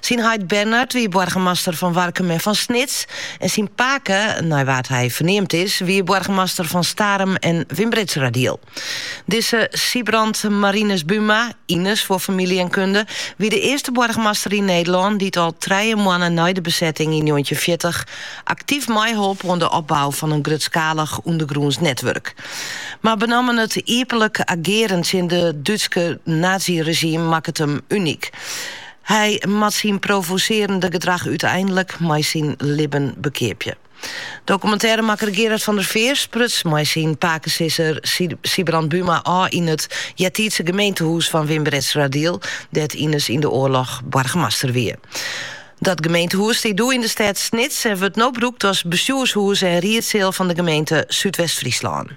Syn heit Bernard wie boargemaster fan Warkum en fan Snits en syn pake, nei wa't er ferneamd is, wie boargemaster fan Starum en Wymbritseradiel. Dizze Sybrand Marinus Buma, Ines foar famylje en kunde, wie de earste boargemaster yn Nederlân dy't al trije moanne nei de besetting yn njoggentjinhundertfjirtich aktyf meiholp oan de opbou fan in grutskalich ûndergrûns netwurk. Mar benammen it iepenlik agearen tsjin it Dútske nazyregime makket him unyk. Hy moat syn provosearjende gedrach úteinlik mei syn libben bekeapje. Dokumintêremakker Gerard van der Veer spruts mei syn pakesizzer Sybrand Buma ôf yn it eartiidse gemeentehûs fan Wymbritseradiel, dêr't Ines yn de oarloch boargemaster wie. Dat gemeentehûs stie doe yn de stêd Snits en wurdt no brûkt as bestjoershûs en riedseal fan de gemeente Súdwest-Fryslân.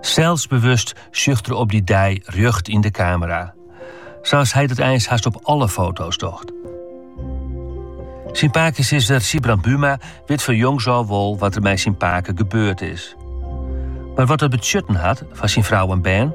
Selsbewust sjocht er op dy dei rjocht yn de kamera, sa's hy dat eins hast op alle foto's docht. Syn pakesizzer Sybrand Buma wit fan jongs ôf wol wat der mei syn pake gebeurd is. Mar wat dat betsjutten hat foar syn frou en bern,